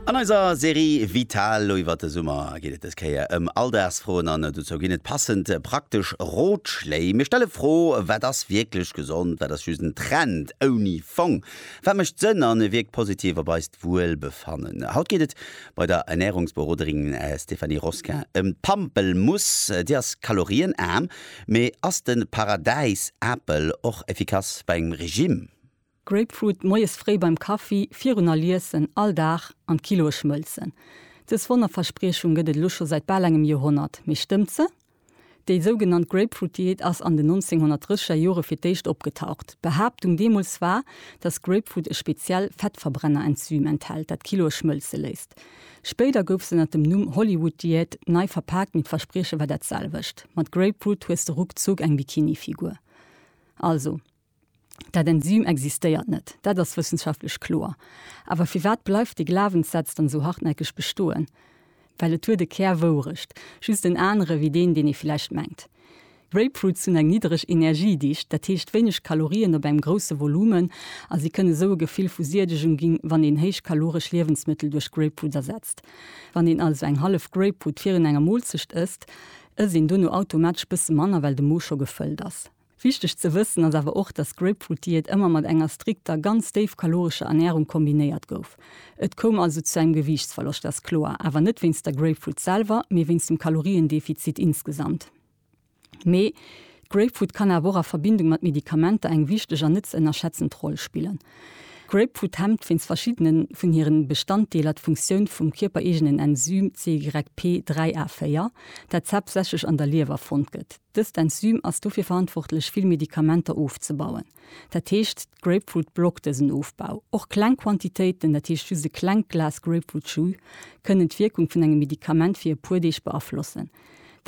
An eiser Serie Vital lo iwwert de Summer geet et dës Kéier ëm Alldagsfroen an dozou ginn et passend praktesch Rotschléi. Mir stelle Fro, Wat ass wierklech gesond? Wat ass just en Trend ouni Fong? Wat mécht Sënn a wierkt positiv op eist Wuelbefannen? Haut geet et bei der Ernärungsberoderin Stéphanie Rosquin ëm d'Pampelmuss. Déi ass kalorienaarm, mee ass de Paradäis-Apel och effikass bei engem Regime? Grapefruit moies fréi beim Kaffi, virun all Iessen, all Dag an d'Kiloe schmëlzen. Dës Wonnerverspriechung gëtt et elo scho säit bal engem Joerhonnert. Mee stëmmt se? Déi sougenannt Grapefruit-Diät ass an den 1930er Jore fir d'éischt opgetaucht. D'Behaaptung deemools war, dass Grapefruit e speziell Fettverbrenner-Enzym enthält, dat d'Kiloe schmëlze léisst. Spéider gouf se ënnert dem Numm Hollywood-Diät nei verpaakt, mee d'Versprieche war dat selwecht, Mat Grapefruit hues de ruckzuck eng Bikini-Figur. Also. Dat Enzym existéiert net, dat ass wëssenschaftlech kloer. Awer firwat bleift dee Glawenssaz dann esou hartnäckeg bestoen? Well et huet e Kär Wourecht, just en anere wéi deen, deen ee vläicht mengt. Grapefruits hunn eng niddereg Energiedicht, dat heescht wéineg Kalorien op engem grousse Volumen, a si kënne sou e Gefill vu Siedegung ginn, wann een héichkaloresch Liewensmëttel duerch Grapefruits ersetzt. Wann een also eng hallef Grapefruit virun enger Moolzecht ësst, ësst een dono automatesch bësse manner, well de Mo scho gefëllt ass. Wichteg ze wëssen ass awer och, dass d'Grapefruit-Diät ëmmer mat enger strikter, ganz déif kalorescher Ernärung kombinéiert gouf. Et koum also zu engem Gewiichtsverloscht, ass kloer, awer net wéinst der Grapefruit selwer, mee wéinst dem Kaloriendefizit insgesamt. Mee d'Grapefruit kann awer och a Verbindung mat Medikamenter eng wichteg an net ze ënnerschätzend Roll spillen. D'Grapefruit hemmt wéinst verschiddene vun hire Bestanddeeler d'Funktioun vum kierpereegenen Enzym CYP3A4, dat haaptsächlech an der Liewer fonnt gëtt. Dëst Enzym ass dofir verantwortlech vill Medikamenter ofzebauen. Dat heescht d'Grapefruit blockt dësen Ofbau. Och kleng Quantitéiten, dat heescht just e klengt Glas Grapefruit Jus, kënnen d'Wierkung vun engem Medikament fir e puer Deeg beaflossen.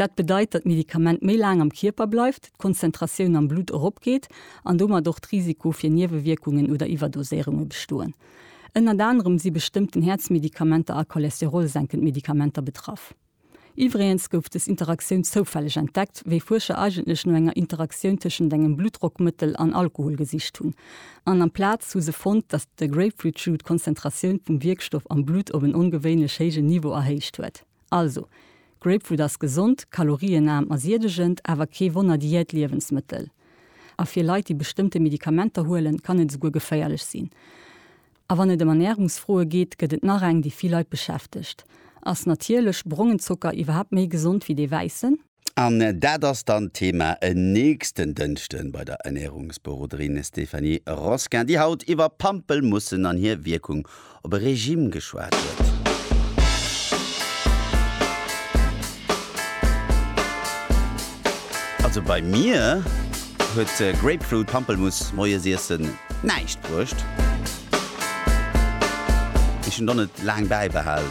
Dat bedeit, datt d'Medikament méi laang am Kierper bleift, d'Konzentratioun am Blutt eropgeet an domat och d'Risiko fir Niewewierkungen oder Iwwerdoséierunge bestoen. Ënnert anerem si bestëmmten Häerzmedikamenter a cholesterolsenkend Medikamenter betraff. Iwwregens gouf des Interaktioun zoufälleg entdeckt, wéi Fuerscher eigentlech no enger Interaktioun tëschent engem Bluttdrockmëttel an Alkohol gesicht hunn. An amplaz hu se fonnt, datt de Grapefruit Jus d'Konzentratioun vum Wierkstoff am Blutt op en ongewéinlech héijen Niveau erhéicht huet. Also, Grapefruit ass gesond, kalorienaarm a siedegend, awer kee Wonner-Diät-Liewensmëttel. A fir Leit, déi bestëmmte Medikamenter huelen, kann et esouguer geféierlech sinn. A wann et ëm Ernärungsfroe geet, gëtt et nach eng, déi vill Leit beschäftegt, Ass natierlech brongen Zocker iwwerhaapt méi gesond wéi dee wäissen? An dat ass dann d'Thema en nächsten Dënschde bei der Ernärungsberoderin Stéphanie Rosquin, déi haut iwwer Pampelmussen an hir Wierkung op e Regime geschwat huet. Also bei mir huet Grapefruit Pampelmuss Moiesiessen näischt bruecht. Ech hunn do net laang bäibehal.